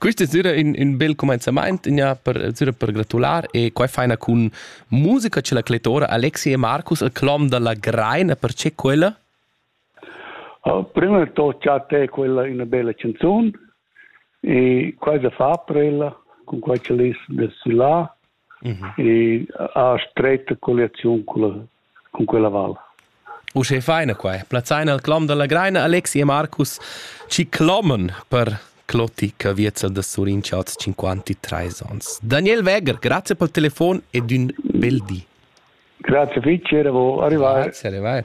Quist es düra ün, ün bel cumenzamaint gnà per, düra per gratular e quai faina cun musica cha la clettora Alexi e Marcus al clom da la Greina, perche quella? Oh, prima di tutto già te quella una bella canzone e quasi fa per ella con quei che l'is da là e ha stretta colliaziun culla, cun quella val. Uschè faina quai. Plazzain al clom da la Greina Alexi e Marcus ci cloman per Clotti Caviezza da Surin Chats 53 ans. Daniel Weger, grazie pel telefon ed ün bel di. Grazie fitg, era arrivai. Grazie, arrivai.